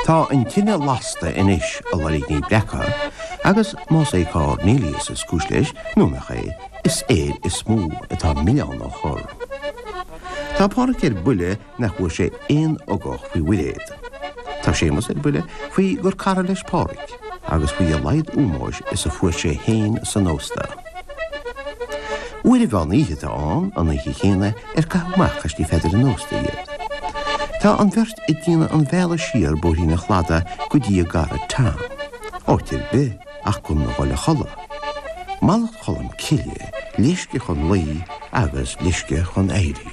Tá an tine lasta anois, a Loirgní Breaca, agus más é Cornelius is cúis leis, nó nach é, is air is mó atá an milleán á chur. Tá Pádraig ar buile nach bhfuair sé aon ugach faoi Mhuiréad. Tá Séamus ar buile faoi gur cara leis Pádraig, agus faoi a laghad ómóis is a fuair sé fhéin san ósta. Uair an mheán oíche atá ann an oíche chéanna ar caitheadh amach as Tigh Pheadair an Ósta iad. Tá an bheirt ag déanamh an bhealaigh siar bóithrín an Chladaigh go dtí a gcara Tom. Áit ar bith ach gan a dhul a chodladh. Mallacht Cholm Cille, leisce chun luí agus leisce chun éirí.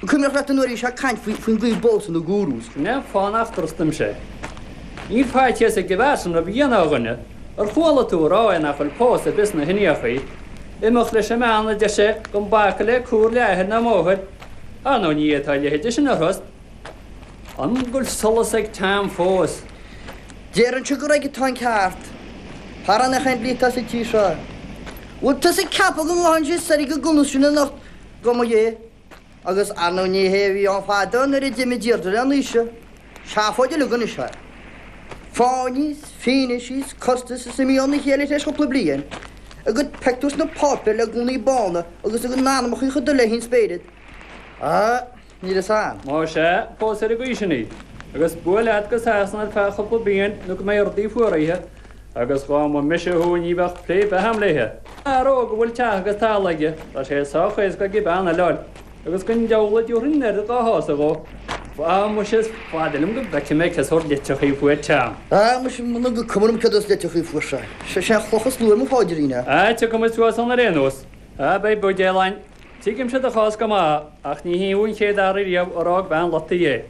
Cuimhneach leat an uair a bhí sé ag caint faoin gcaoi a bpósann na gúrús. Cnoc fán ach drostaim sé. Níl faitíos ag de Vincent rud a dhéanamh ar dhuine. Ar chuala tú ag rá é nach bhfuil pósadh ar bith sna hIndiachaí? Imeacht leis an mbean a deir sé, gan bacadh le comhairle athair ná máthair. Á no ní é tá a leithide sin ina thost. An bhfuil solas ag Tom fós? Déarfainnse gur aige atá an ceart. Thar an tseandlí atá sa tír seo. Bhfuil tusa ag ceapadh go ngabhfaidh sé soir ag an gcumas sin anocht go maidh é? Agus ar ndóigh ní hé a bhí ann fadó nuair a d'imigh Deirdre le Naoise. Seafóid uilig anois é. Fáinní 's fianaise 's costais is imithe óna chéile tar éis chúpla bliain. A gcuid pictiúr sna páipéir le gúnaí bána agus a gcuid anamacha chomh dubh le haon spéireat. Á, níl fhios a'am. Más ea, pós ar an gcaoi sin í. Agus buail leat go Sasana ar feadh chúpla bliain nó go mbeidh rudaí fuaraithe Agus dhá mba mise thú ní bheadh plé ar bith a'm léithe. Fear óg a bhfuil teach agus talamh aige, tá sé sách éasca aige bean a fháil, agus gan diabhal a dtabharfainn an oiread dhá shásamh dhó. Á mhuise is fada liom go bhfeicfidh mé cén sórt litreachaí a fuair an tSean. Á mhuise muna cuma liom cén sórt litreachaí a fuair sé. Sé an chloch is lú ar mo phaidrín é. Á tiocfaimid suas ann ar aon nós. Á beidh buidéal a'inn. Tuigimse do chás go maith, ach ní thú an chéad fhear ariamh a d'fhág bean loite é.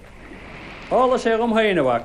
Tharla sé dhom féin, a mhac.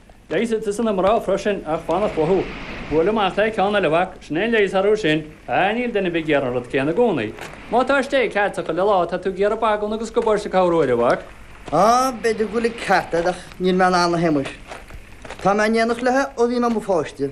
Leigheas a'dsa ar na mná freisin ach fanacht uathu. Buail amach le ceann eile a mhac, sin é an leigheas orthu sin. Á, níl duine ar bith ag iarraidh an rud céanna i gcónaí. Má tá steak a'd chuile lá tá tú ag iarraidh bagún agus gabáiste corruair a mhac. Á, b'fhéidir go bhfuil an ceart a'd ach níl mé in ann a Shéamais. Tá mé in éineacht leithe ó bhí mé i mo pháiste.